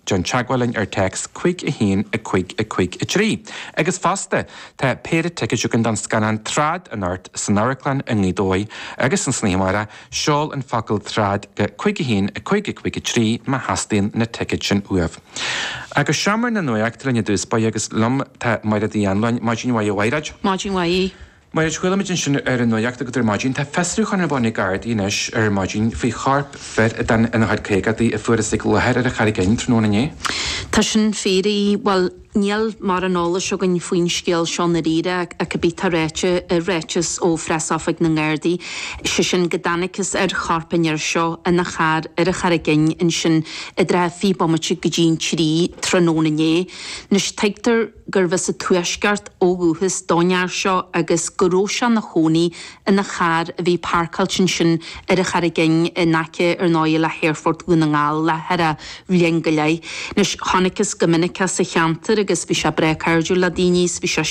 Déan teagmháil linn ar téacs 5 1 55 3 agus fosta tá péire ticéad againn don scannán Trad anocht san amharclann i nGaoth Dobhair agus san oíche amárach, seol an focal Trad go 5 1 55 3 má theastaíonn na ticéid sin uaibh. Ach go seomra na nuaíochta linn i dtús báire agus liom tá Mairéad Uí Annluain, maidin mhaith, a Mhaighread. Maidin mhaith, a Aoidh. Mar a chuala muid ansin ar an nuacht agat ar maidin, tá fiosrúchán ar bun ag Gardaí anois ar maidin faoi chorp fir a bhí ina chuid caogaidí a fuarthas ag láthair ar an Charraig Fhinn tráthnóna inné. Tá sin fíor, a Aoidh. Bhuel, níl mórán eolais againn faoin scéal seo i ndáiríre ach cibé atá ráite i ráiteas ó phreasoifig na nGardaí, sé sin go dtáinigtheas ar chorp an fhir seo ina charr ar an Charraig Fhinn ansin i dtrátha 20 bomaite go dtí an trí tráthnóna inné. Anois, tuigtear. gurbh as an Tuaisceart ó dhúchas don fhear seo agus go raibh sé ina chónaí ina charr a bhí páirceáilte ansin ar an Charraig Fhinn in aice ar ndóigh le hAerfort Dhún na nGall le thar bhliain go leith. Anois, chonaictheas go minic é sa cheantar agus bhí sé breá cairdiúil le daoine agus bhí sé,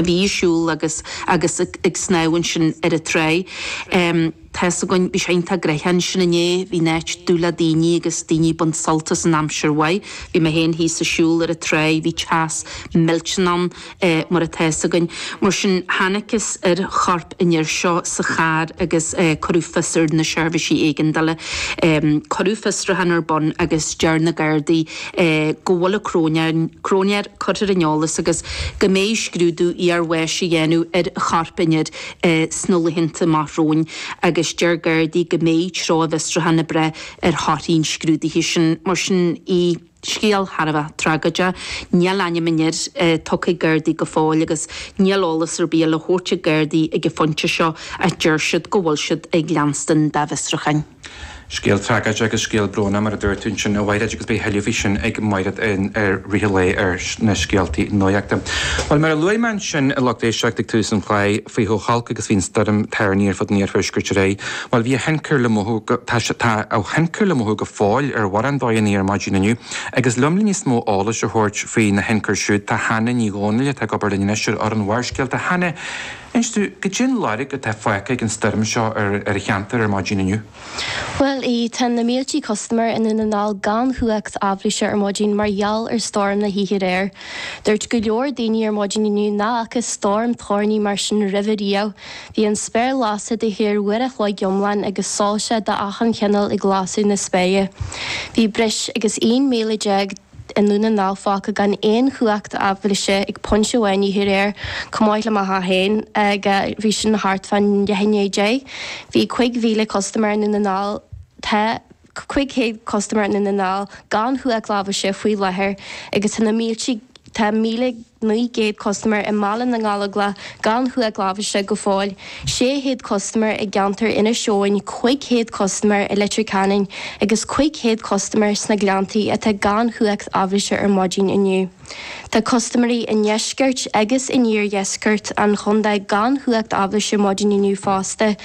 bhí ag siúl agus, agus ag snámh ansin ar an tráigh. tá's againn, bhí sé iontach gnoitheach ansin inné, bhí an áit dubh le daoine agus daoine ag baint sult as an aimsir mhaith, bhí mé féin thíos ag siúl ar an tráigh, bhí teas millteanach ann mar atá's againn. Mar sin, tháinigtheas ar chorp an fhir seo sa charr agus cuireadh fios ar na seirbhísí éigeandála. Cuireadh fiosrúchán ar bun agus deir na Gardaí go bhfuil an cróinéir curtha ar an eolas agus go mbeidh scrúdú iarbháis á dhéanamh ar chorp an fhir. sna laethanta amach romhainn agus deir Gardaí go mbeidh treo a bhfiosrúcháin ag brath ar thorthaí an scrúdaithe sin. Mar sin, a Aoidh, scéal thar a bheith tragóideach. Níl ainm an fhir tugtha ag Gardaí go fóill agus níl eolas ar bith le thabhairt ag Gardaí ag an phointe seo ach deir siad go bhfuil siad ag leanstan dá bhfiosrúcháin. Scéal tragóideach agus scéal brónach, mar a dúirt tú ansin, a Mhaighread, agus beidh a thuilleadh faoi sin ag Maighread i rith an lae ar na scéaltaí nuaíochta. Bhuel, mar a luaigh mé ansin a lucht éisteachta ag tús an chláir, faoi chomh holc agus a bhí an stoirm toirní ar fud an iarthuaiscirt aréir, bhuel, bhí a thionchar le mothú, tá a thionchar le mothú go fóill ar mhórán dóigheanna ar maidin inniu. Agus liom le níos mó eolais a thabhairt faoina thionchar siúd tá Hannah Ní Dhomhnaill atá ag obair linn anois ar fhoireann Bharrscéalta. Hannah. Inis dúinn, goidé an lorg atá fágtha ag an stoirm seo ar an cheantar ar maidin inniu. Bhuel, a Aoidh, tá na míltí custaiméir i nDún na nGall gan chumhacht aibhléise ar maidin mar gheall ar stoirm na hoíche aréir. Dúirt go leor daoine ar maidin inniu nach bhfaca stoirm toirní mar sin roimhe riamh. Bhí an spéir lasta de shíor uair an chloig iomlán agus soilse de achan chineál ag lasadh na spéire. Bhí breis agus 11,000. i nDún na nGall fágtha gan aon chumhacht aibhléise ag pointe amháin oíche aréir, chomh maith le Maigh Eo féin, agus bhí sin thart fán deich i ndiaidh a deich. Bhí cúig mhíle custaiméir i nDún na nGall, tá cúig chéad custaiméir i nDún na nGall gan chumhacht aibhléise faoi láthair agus tá na míltí, tá míle 900 custaiméir i mBaile na nGallóglach gan chumhacht aibhléise go fóill, 600 custaiméir i gceantar Inis Eoghain, 500 custaiméir i Leitir Ceanainn agus 500 custaiméir sna Gleanntaí atá gan chumhacht aibhléise ar maidin inniu. Tá custaiméirí i ndeisceart agus in iardheisceart an chontae gan chumhacht aibhléise ar maidin inniu fosta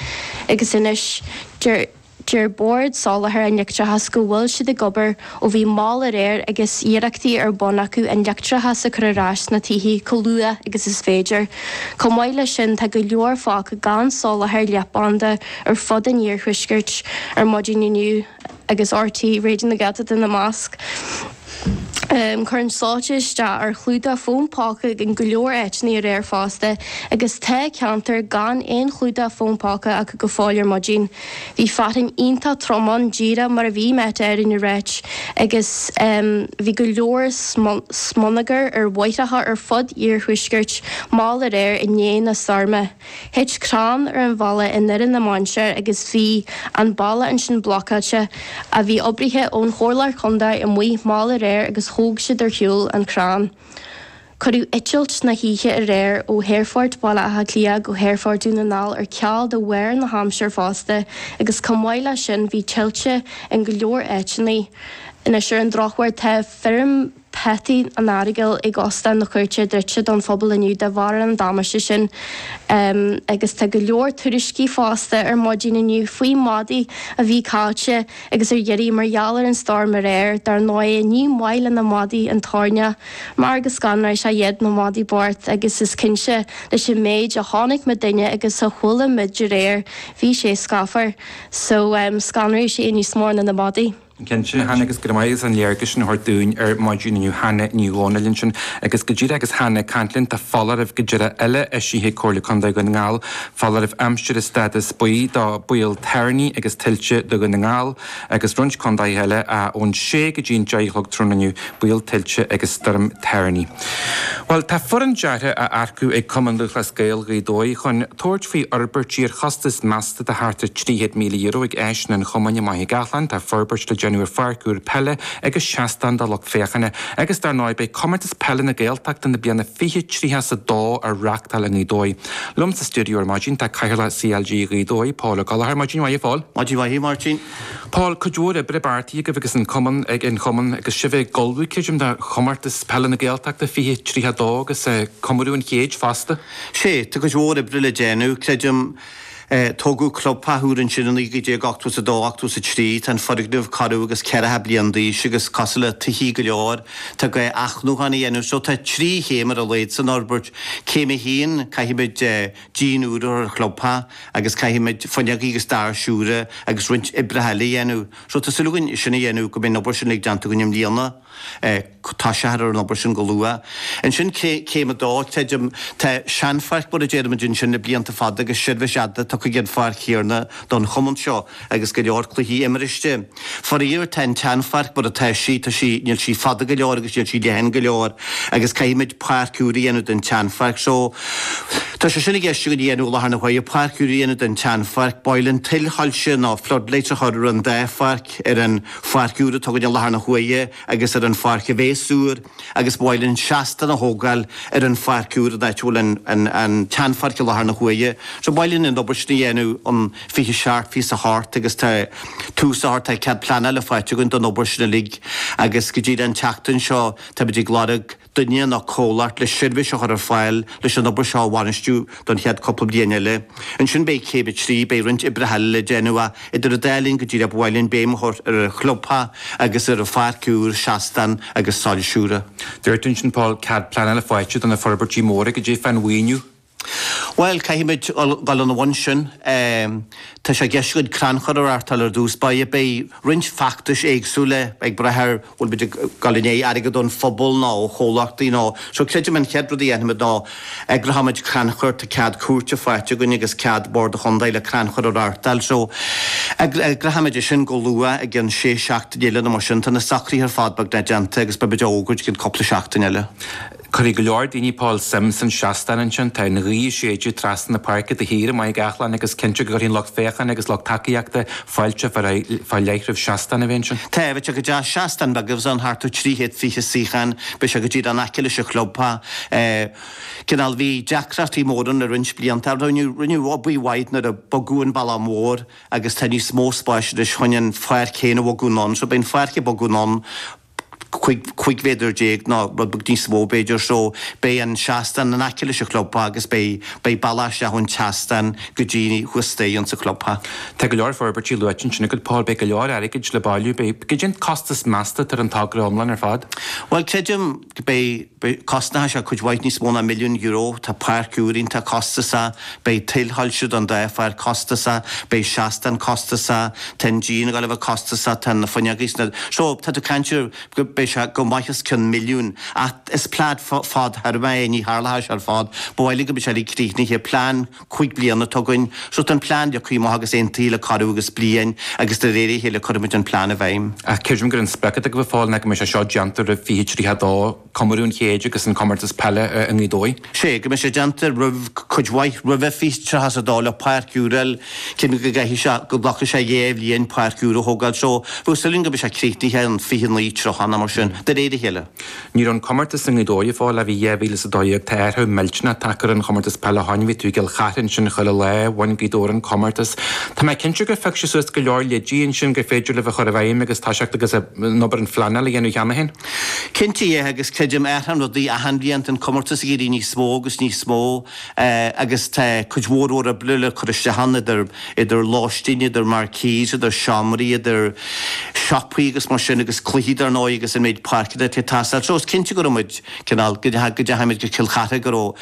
agus anois deir Deir Bord Soláthair an Leictreachais go bhfuil siad ag obair ó bhí mall aréir agus iarrachtaí ar bun acu an leictreachas a chur ar ais sna tithe chomh luath agus is féidir. Chomh maith leis sin, tá go leor fágtha gan soláthar leathbhanda ar fud an iarthuaiscirt, ar maidin inniu agus RTÉ Raidió na Gaeltachta ina measc. Chuir an soilseach isteach ar chlúdach fón póca in go leor áiteanna aréir fosta agus tá ceantair gan aon chlúdach fón póca acu go fóill ar maidin. Bhí fearthainn iontach trom ann díreach mar a bhí Met Éireann ag ráit agus bhí go leor smionagar ar bhóithre ar fud an iarthuaiscirt mall aréir i ndiaidh na stoirme. Thit crann ar an bhealach i nDoire na Mainséar agus bhí an bealach ansin blocáilte. Bhí oibrithe ón Chomhairle Contae amuigh mall aréir agus thóg siad ar shiúl an crann. Cuireadh eitilt na hoíche aréir ó hAerfort Bhaile Átha Cliath go hAerfort Dhún na nGall ar ceal de bharr na haimsire fosta agus chomh maith leis sin bhí tuilte in go leor áiteanna anois ar an drochuair tá feirm Peataí an Earagail ag Óstán na Cúirte druidte don phobal inniu de bharr an damáiste sin agus tá go leor tuairiscí fosta ar maidin inniu faoi mhadaidh a bhí caillte agus ar iarraidh mar gheall ar an stoirm aréir. Dar ndóigh ní maith le na madaidh an toirneach mar go scanraigh sé iad, na madaidh bhochta, agus is cinnte leis an méid a chonaic muidinne agus a chuala muid aréir bhí sé scáfar so scanraigh sé níos mó ná na madaidh. Cinnte, Hannah agus go raibh maith agat as an léargas sin a thabhairt dúinn ar maidin inniu Hannah Ní Dhomhnaill ansin agus go díreach agus Hannah ag caint linn tá foláireamh go díreach eile eisithe ag Comhairle Contae Dhún na nGall, foláireamh aimsire stádas buí do bhaol toirní agus tuilte do Dhún na nGall agus roinnt contaetha eile a ón sé go dtí an deich a chlog tráthnóna inniu. Baol tuilte agus stoirm thoirní. Bhuel, tá foireann deartha á earcú ag Cumann Lúthchleas Gael Ghaoth Dobhair chun tabhairt faoi fhorbairtí ar chostas measta de thart ar €300,000 ag áiseanna an chumainn i Machaire Gathlán. Tá forbairt le déanamh ar pháirc úr peile agus seastán do lucht féachana agus dar ndóigh beidh Comórtas Peile na Gaeltachta na bliana 2032 á reachtáil i nGaoth Dobhair. Liom sa stiúideo ar maidin tá Cathaoirleach CLG Ghaoth Dobhair, Paul Ó Gallchóir. Maidin mhaith a Phaul. Maidin mhaith a Mháirtín. Paul, Cuid mhór oibre beartaithe agaibh agus an Cumann ag, an Cumann agus sibh ag ullmhú creidim do Chomórtas Peile na Gaeltachta, fiche tríocha a dó agus eh, comóradh an chéid fosta. Sé, tá cuid mhór oibre le déanamh, creidim eh, tógadh clubtheach úr ansin i naoi gcéad déag ochtó is a dó, ochtó is a trí, tá an foirgneamh corradh agus ceathracha bliain d'aois agus cosúil le tithe go leor, tá gá athnuachan a dhéanamh so tá trí chéim ar a laghad san fhorbairt, céim a haon, caithfimid eh, díon úr a chur ar an chlubtheach agus caithfimid fuinneoga agus doirse úra agus roinnt oibreacha eile a dhéanamh. So tá súil againn sin a dhéanamh, go mbeidh an obair sin uilig déanta againn i mbliana. Tús a chur ar an obair sin go luath. Ansin céim a dó, creidim, tá seanpháirc mar a deirimid ansin le blianta fada agus seirbhís fhada tugtha ag an pháirc chéanna don chumann seo. agus go leor cluichí imiriste. Faraor, tá an tseanpháirc mar atá sí, tá sí, níl sí fada go leor agus níl sí leathan go leor agus caithfimid páirc úr a dhéanamh den tseanpháirc. So, tá sé sin i gceist againn a dhéanamh i láthair na huaire, páirc úr a dhéanamh den tseanpháirc, ba mhaith linn tuilsoilse nó floodlights a chur ar an dá pháirc, ar an pháirc úr atá againn i láthair na huaire agus ar an pháirc a bhéas úr agus ba mhaith linn seastán a thógáil ar an pháirc úr in áit a bhfuil an tseanpháirc i láthair na huaire. So, ba mhaith linn an obair sin a dhéanamh. fiche seacht, fiche is a hocht agus tá tús a thárt tá cead pleanála faighte againn don obair sin uilig agus go díreach an tseachtain seo táimid ag lorg duine nó comhlacht le seirbhís a chur ar fáil leis an obair seo a bhainistiú don chéad cúpla bliain eile ansin beidh céim a trí beidh roinnt oibreacha eile le déanamh idir an dá linn go díreach ba mhaith linn béim a chur ar an chlubtheach agus ar an pháirc úr seastán agus soilse úra. Dúirt ansin Paul cead pleanála faighte do na forbairtí móra cad é faoin mhaoiniú Bhuel, caithfimid dhul ina bhun sin. Tá sé i gceist againn crannchur a reáchtáil ar dtús. Beidh, beidh roinnt feachtais éagsúla ag brath ar an bhfuil muid ag gabháil i ndiaidh airgead ón phobal nó ó chomhlachtaí nó so creidim an chéad rud a dhéanfaimid ná eagróimid crannchur, tá cead cúirte faighte againn agus cead Bord an Chontae le crannchur a reáchtáil so eagróimid é sin go luath i gcionn sé seachtaine eile nó mar sin. Tá na socruithe ar fad beagnach déanta agus beimid á fhógairt i gcionn cúpla seachtain eile. Cuirfidh go leor daoine Paul suim san seastán ansin. Tá an ghaoth ag séideadh trasna na páirce de shíor i Machaire Gathlán agus is cinnte go gcuirfidh an lucht féachána agus lucht tacaíochta fáilte fá leith roimh seastán a bheith ansin. Tá, bheadh sé go deas seastán beag a bheas ann, thart ar 320 suíochán. Beidh sé go díreach in aice leis an chlub, tá cineál, bhí deacrachtaí móra ann le roinnt blianta, rinneadh, rinneadh obair mhaith nuair a bogadh an balla mór agus tá níos mó spáis anois chun an pháirc féin a bhogadh anonn, so beidh an pháirc ag bogadh anonn. 15 mhéadar nó rud beag níos mó, b'fhéidir, so beidh an seastán in aice leis an chlubtheach agus beidh, beidh bealach isteach ón tseastán go dtí thuas staighre insa chlubtheach. Tá go leor forbairtí luaite ansin agat, Paul, beidh go leor airgid le bailiú, beidh, beidh, cad é an costas measta atá ar an togra iomlán ar fad? Bhuel, creidim go beidh. Beidh cosnóidh sé cuid mhaith níos mó ná milliún euro, tá páirc úr iontach costasach, beidh tuilsoilse don dá pháirc costasach, beidh seastán costasach, tá an díon ag gabháil a bheith costasach, tá na fuinneogaí sna. So, tá tú caint ar go beidh sé go maith os cionn milliún ach is plean fadtéarmach é, ní tharlóidh sé ar fad, ba mhaith linn go mbeidh sé uilig críochnaithe, plean. cúig bliana atá againn. So tá an plean leagtha amach agus aontaithe le corradh agus bliain agus de réir a chéile cuirfimid an plean i bhfeidhm. Ach creidim gur an sprioc atá agaibh a Phóil ná go mbeidh sé seo déanta roimh fiche tríocha a dó, comóradh an chéid agus an comórtas peile i nGaoth Dobhair. Sé, go mbeidh sé déanta roimh, cuid mhaith roimhe, fiche tríocha is a dó le páirc úr a fháil. Creidim go gcaithfidh sé, go nglacfaidh sé dhá bhliain páirc úr a thógáil. So, bheadh súil againn go mbeidh sé críochnaithe an fiche naoi, tríocha, nó mar sin, de réir a chéile. Ní raibh an comórtas i nGaoth Dobhair a Phóil ó bhí 2012 tá athrú millteanach tagtha ar an chomórtas peile ó shin bhí tú i gCill Chartha ansin chuile lá bhain Gaoth Dobhair an comórtas tá mé cinnte gur phioc sibh suas go leor leidí ansin gur féidir libh a chur i bhfeidhm agus toiseacht agus an obair an phleanáil a dhéanamh cheana féin. Cinnte é agus creidim athraíonn rudaí achan bhliain tá an comórtas ag éirí níos mó agus níos mó agus tá cuid mhór oibre le cur isteach ann idir, idir lóistín, idir marquees, idir seomraí, idir siopaí agus mar sin agus cluichí dar ndóigh agus an méid páirceanna atá ag teastáil. So is cinnte go raibh muid, cineál, go dtá, go dteachaidh muid go Cill Chartha go raibh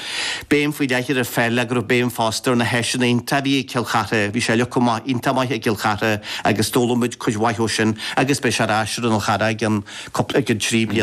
béim faoi leith ar pheil ach go raibh béim fosta ar na háiseanna iontach a bhí ag Cill Chartha. Bhí sé leagtha amach iontach maith ag Cill Chartha agus d'fhoghlaim muid cuid mhaith ó sin agus beidh sé ar ais ar an Fhál Charrach in cúpla, i gceann trí bliana.